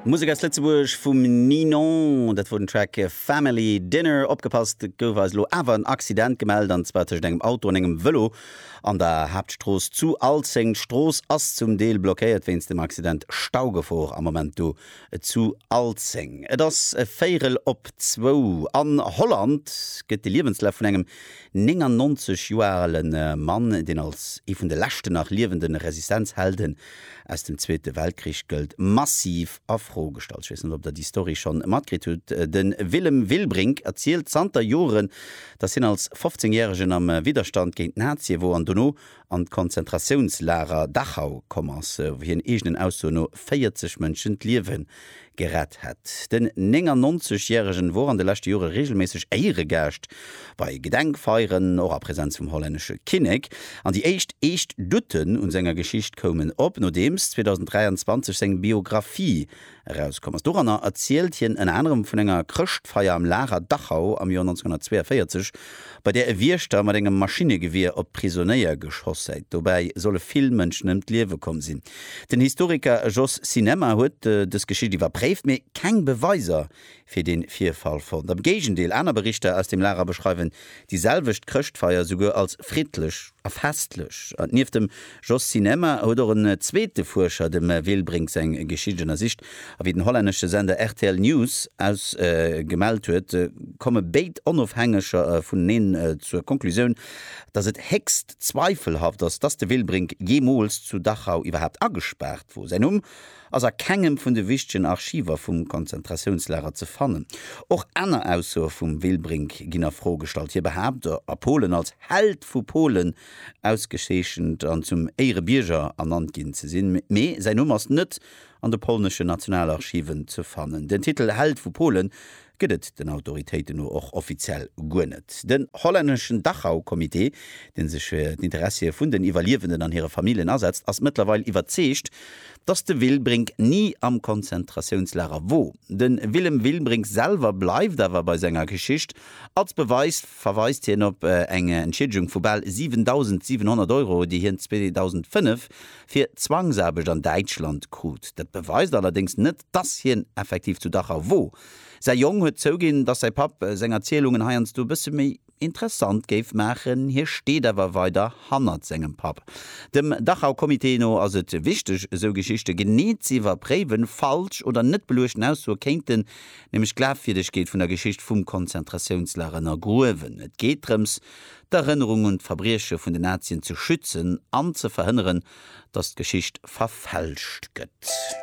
Musek aus Lëtzebuerg vum Ninon, dat wor den Track Family Dinner. Opgepasst, et gouf eis elo awer en Accident gemellt, an zwar tëschent engem Auto an engem Vëlo an der Haaptstrooss zu Alzeng. D'Strooss ass zum Deel blockéiert wéinst dem Accident. Staugefor am Moment do zu Alzeng. Et ass e Véierel op zwou. An Holland gëtt de Liewenslaf vun engem 99 Joer ale Mann, deen als ee vun de leschten nach liewende Resistenzhelden aus dem Zweete Weltkrich gëllt, massiv a Fro gestallt. Ech weess net, ob Der déi Story scho matkritt hutt. De Willem Wilbrink erzielt zanter Joren, datt hien als 15 Järegen am Widderstand géint d'Nazie wor an dono an d'Konzentratiounslager Dachau komm ass, wou hien eegenen Aussoen no 40 Mënschen d'Liewen gerett hätt. Den 99 järegen wor an de leschte Jore reegelméisseg Éieregaascht bei Gedenkfeieren, och a Präsenz vum hollännesche Kinnek. An déi éischt eescht Douten un senger Geschicht koumen op, nodeems 2023 seng Biographie erauskomm ass. Doranner erzielt hien ënner anerem vun enger Chrëschtfeier am Lager Dachau am Joer 1942, bei där e Wiechter mat engem Maschinnegewier op d'Prisonéier geschoss häit. Dobäi solle vill Mënschen ëm d'Liewe komm sinn. Den Historiker Jos Sinemma huet dës Geschicht iwwerpréift, mee keng Beweiser fir de Virfall fonnt. Am Géigendeel, aner Berichter aus dem Lager beschreiwen déi selwecht Chrëschtfeier souguer als friddlech a festlech. Nieft dem Jos Sinemma huet och en zweete Fuerscher, dem Will Brinks, eng Geschicht ënnersicht. A wéi den hollännesche Sender rtl News aus gemellt huet, komme béid Onofhängeger vuneneen zur Conclusioun, datt et héchst Zweifelhaft ass, dass de Wilbrink jeemools zu Dachau iwwerhaapt agespaart wor. Säin Numm ass a kengem vun de wichtegen Archiver vum Konzentratiounslager ze fannen. Och aner Aussoe vum Wilbrink ginn a Fro gestallt. Hie behaapt, a Polen als Held vu Polen ausgezeechent an zum Éierebierger ernannt ginn ze sinn, mee säin Numm ass net an de polneschen Nationalarchiven ze fannen. Den Titel Held vu Polen gëtt et den Autoritéiten no och offiziell guer net. Den hollänneschen Dachau-Comité, dee sech fir d'Interessie vun den Iwwerliewenden an hire Familljen asetzt, ass mëttlerweil iwwerzeegt, datt de Wilbring ni am Konzentratiounslager wor. De Willem Wilbring selwer bleift awer bei senger Geschicht. Als Beweis verweist hien op eng Entschiedegung vu bal 7.700 Euro, déi hien 2005 fir Zwangsaarbecht an Däitschland krut. Dat beweist allerdéngs net, Dass hien effektiv zu Dachau wor. Säi Jong huet zouginn, dass säi Papp seng Erzielungen heiansdo e bësse méi interessant géif maachen. Hie steet awer weider hannert sengem Papp. Dem Dachau Comité no ass et wichteg, esou Geschichte genee z'iwwerpréiwen. Falsch oder net beluechten Aussoe kéinten nämlech d'Glafwierdegkeet vun der Geschicht vum Konzentratiounslager ënnergruewen. Et geet drëms, d'Erënnerung un d'Verbrieche vun den Nazien ze schützen an ze verhënneren, dass d'Geschicht verfälscht gëtt.